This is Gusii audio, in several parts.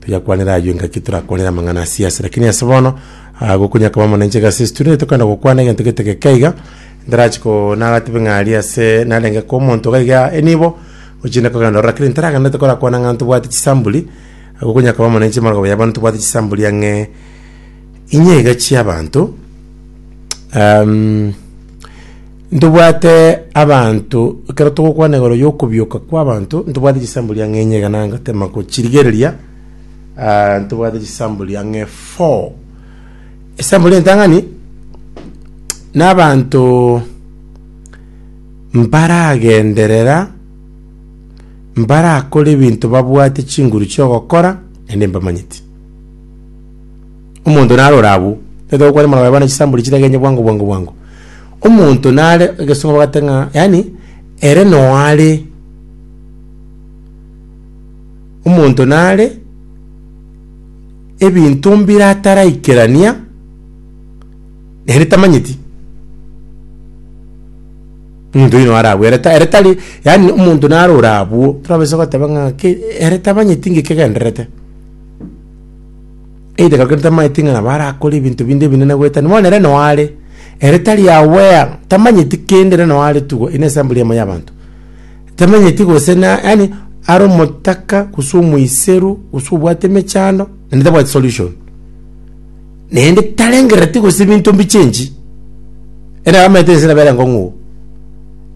Toyakwanera ayio engaki torakwanere amang'ana a siasa, lakini ase bono ah, gokunya koba mono inche gase studio nigo tokwenda gokwana egento gete geke iga ndarachi ko nagatebe ng'a aria ase narenge ko omonto iga iga enibo ochende kogenda ororo lakini ntaragenderete korakwana ng'a ntobwate chisambuli gokunya koba mono inche amarababo ya bono tobwate chisambuli ang'e inye iga chiabanto um, Ntobwate abanto, ekero togokwana igoro y'okobioka kw'abanto, ntobwate chisambo riang'e inye iga nangatema gochirigereria, ah, ntobwate chisambo riang'e four. Esambo ri'entang'ani, n'abanto mbaragenderera, mbarakore ebinto babwate chinguru chi'ogokora, naende mbamanyeti. Omonto narore abwo, tari okware moroba bana chisamburi chitagenya bwango bwango bwango. Omonto nare egesongo bagate ng'a yaani ere noare. Omonto nare ebinto mbire ataraikerania nere tamanyeti. Omonto oyio noare abwo ere ta- ere tari yaani omonto narore abwo, torabasa goteba ng'a ki ere tamanyeti ng'iki kegendererete. Eidagera kende tamaeti ng'a nabo arakore ebinto binde ebinene goeta ime. Bono ere noo are, ere tari aware, tamanyeti kende, ere noo are tu iga, ere ensample eyemo y'abanto. Tamanyeti gose na, yaani are omotaka gose omoiseru gose obwate emechando naende tabwati solution. Naende tarengereti gose ebinto mbichenji, ere nabo amaete ense nabo ere enkong'u.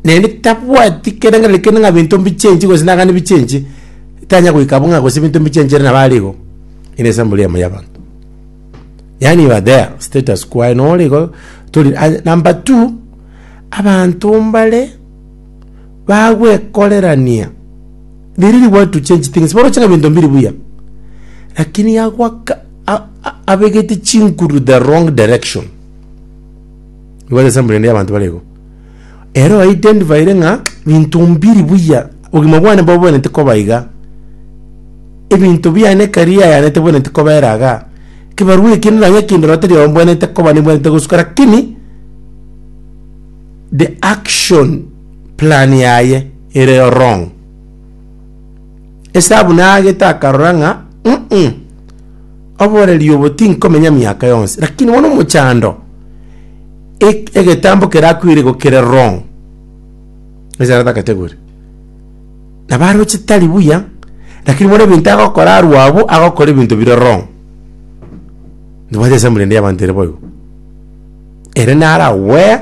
Naende tabwati kerengerero kende ng'a ebinto mbichenji gose nagane bichenji, tanya goika abwo ng'a gose ebinto mbichenji ere nabo are igo. ere esample yamo y'abanto yaani you are there status quo aye nore igo tori aye number two abanto mbare bagwekorerania there is what to change things boroche ng'a ebinto mbiri buya lakini agwaka a- a- abegete chinguru the wrong direction igo ere esample ende y'abanto bare igo. Ere o identifiere ng'a binto mbiri buya, obogima bwane bobwenerete koba iga. Ebinto biane karier ayane tebwenerete kobera iga. Ekebarua eke nonye kende noo tari ombwenerete koba nebwenerete gosuka lakini the action plan yaye ere wrong. Esabu naagete akarora ng'a uh-uh oboreri obo tinkomenya miaka yonsi lakini bono omochando. Ek- egetambo kerakwire igo kere wrong ase ara takategori nabo aroche tari buya lakini bono ebinto agokora arwo abwo agokora ebinto bire wrong ndobwate esampuli ende y'abanto ere boigo ere naro aware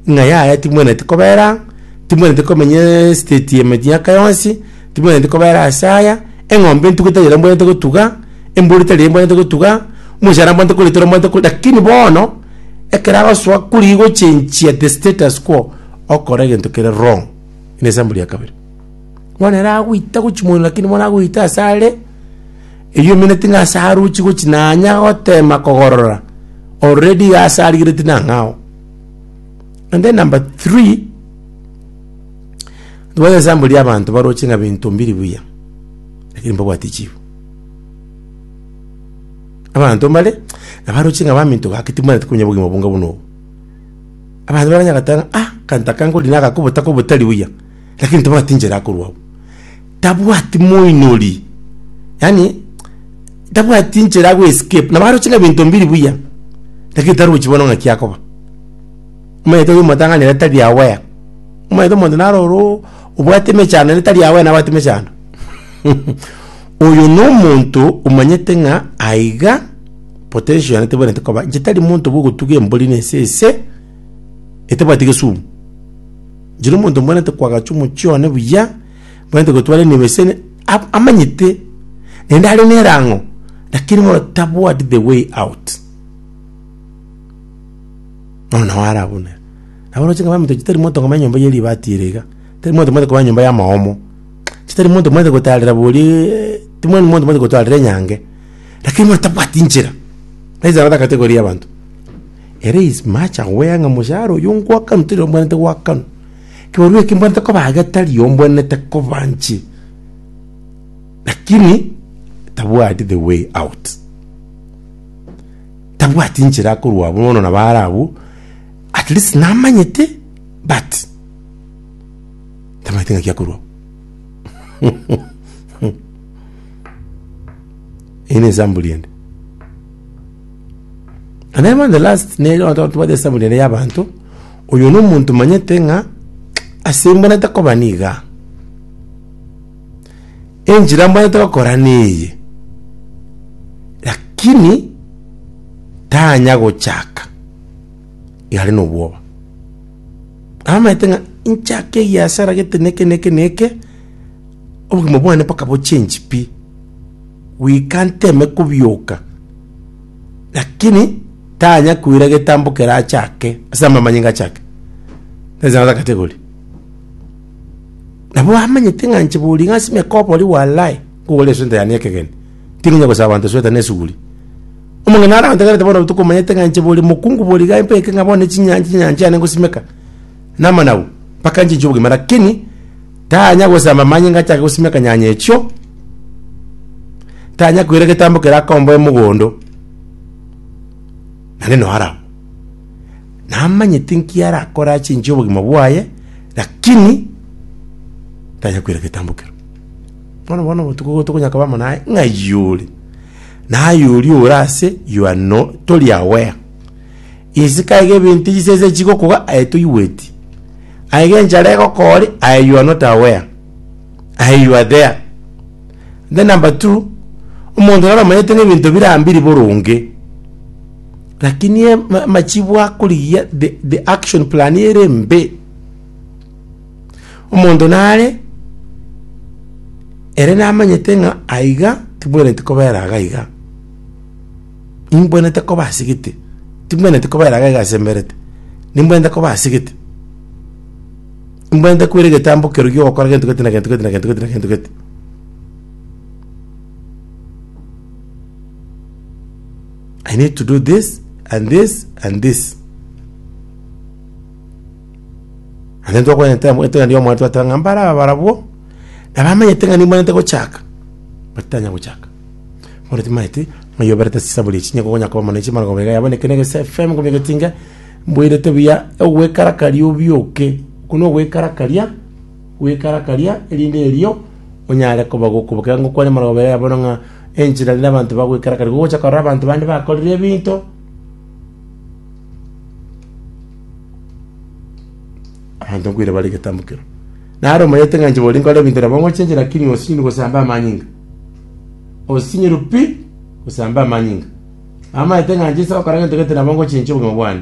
ng'a yaya timwenereti kobera aa timwenereti komenyaa esiteti emiaka yonsi. Timwenereti kobera ase aya, Eng'ombe entuga etari ere mbwenerete gotuga, embori tari ere mbwenerete gotuga, omochando mbwenerete korita ore mbwenerete korita, lakini bono, ekero agosoa kori gochenchia the status quo, okora egento kere wrong, ere esample ya kabere. Bono ere agoita gochimoino lakini bono agoita ase are, eywo emeneti ng'a ase arochi gochi nanya gotema kogorora, already iga ase arigereti nang'ao. And then number three. Intwe nesambo ri'abanto baroche ng'a binto mbiri buya, lakini mbabwati chifu. Abanto mbare nabaroche ng'a baminto gaki tibamaneti konya obogima obonge buna obo. Abanto bare banyagete ng'a ah, akanto aka nkori naga kobota kobe otari buya, lakini tabwati enchera akorwa abwo. Tabwati moinori, yaani tabwati enchera ago escape, nabaroche ng'a binto mbiri buya, lakini tarochi bono ng'a ki akoba. Omanyete oyio motang'anire tari aware. Omanyete omonto naro oro obwate emechando naende tari aware nabwate emechando. Oyo na omonto omanyete ng'a aiga potential yane tebwenerete koba. Inche tari monto bwa ogotuga embori na ese ese etabwati gesumu. Inche na omonto mbwenerete koagacha omochie one buya, mbwenerete gotwara eneba ase ab- amanyete naende are nerang'o lakini bono tabwati the way out. Nonya ware abwo nere. Nabo oroche ng'a baminto chitari monto ng'a nyomba ye ribati ere iga, tari monto omanyete koba nyomba y'amaomo, chitari monto omanyete gotarera boriaaa timwendi monto omanyete gotarera enyange, lakini bono tabwati nchera, na enchera natagaete koria abanto. Ere is much aware ng'a moshahara oyo ngoakanwa tari ombwenerete goakanwa, kebarua eke mbwenerete koba iga tari ombwenerete koba nche, lakini tabwati the way out. tabwati inchera akorwa bono na baare abwo, at least namanyete but tamanyete ng'aki akorwa Eye ne example ende. And then the last ne tobate example ende ya abanto oyo no omonto manyete ng'a ase mbona takoba niga enchera mbaete gokora neye, lakini tanya gochaka iga are nobwoba. Amaete ng'a inchake egeasara gete neke neke neke, obogima bwane mpaka bo change pi, goika nteme kobioka, lakini tanya koira egetambo kere achake ase amamanyinga achake, tari chang'ata gati egori. Nabo amanyete ng'a inche bori ng'a ase emiaka obori walai nkogora esweta yane y'ekegeni, ting'enya gosaba abanto esweta na esuguri. Omong'ina arantegerete bono botuko omanyete ng'a inche bori mokungu bori iga mbeke ng'a bono chinyancha chinyancha yane ngosimeka namanagu mpaka nchinche obogima lakini tanya gosamba amanyinga achake gosimeka nyanya echio, tanya koira egetambo kerakomboe mogondo, naende noo arabwo. Namanyete nki arakore achinche obogima bwaye, lakini tanya koira getambo kero. Bono bono obotuko obo tokonya koba amo naye ng'a yore. Naye oria ore ase you are no, tori aware. Isiko aye gebinto chisese chigokoga aye toigweti. Aye genchara egokore aye you are not aware. Aye you are there. Then number two, omonto naro omanyete ng'a ebinto birambiri boronge. Lakini amachibu akorigia the, the action plan ere mbe omonto nare ere namanyete ng'a aiga tibwenereti kobera iga iga imbwenerete koba asigete timbwenereti kobera iga iga asemberete nimbwenerete koba asigete imbwenerete kwera egetambo keru gia ogokora gento gete na gento gete na gento gete na gento gete I need to do this and this and this. And then twakwenyete amwete ng'a ndiyo omwete wateba ng'a mbare aba barabwo nabamenyete ng'a nimwenyete gochaka but tanya gochaka bono timanyeti ng'a iga oberete chisaburi echi nigo okonya koba mono chimana koba iga yabo nekende gese FM ngomia getinga mboirete buya ogwekarakaria obioke okwo nogwekarakaria Gwekarakaria, erinde erio onyare koba gokobokera ngokwa nemarogobero ya bono ng'a enchera rende abanto bagwekarakari gogocha korora abanto bande bakorire ebinto abanto nkoira bare egetambo kero. Nare omanyete ng'a inche bori nkore ebinto nabo ngochenchera lakini osinywe gosamba amanyinga. Osinyirwe pi gosamba amanyinga. Amanyete ng'a inche nse gokora gento gete nabo ngochenchia obogima bwane.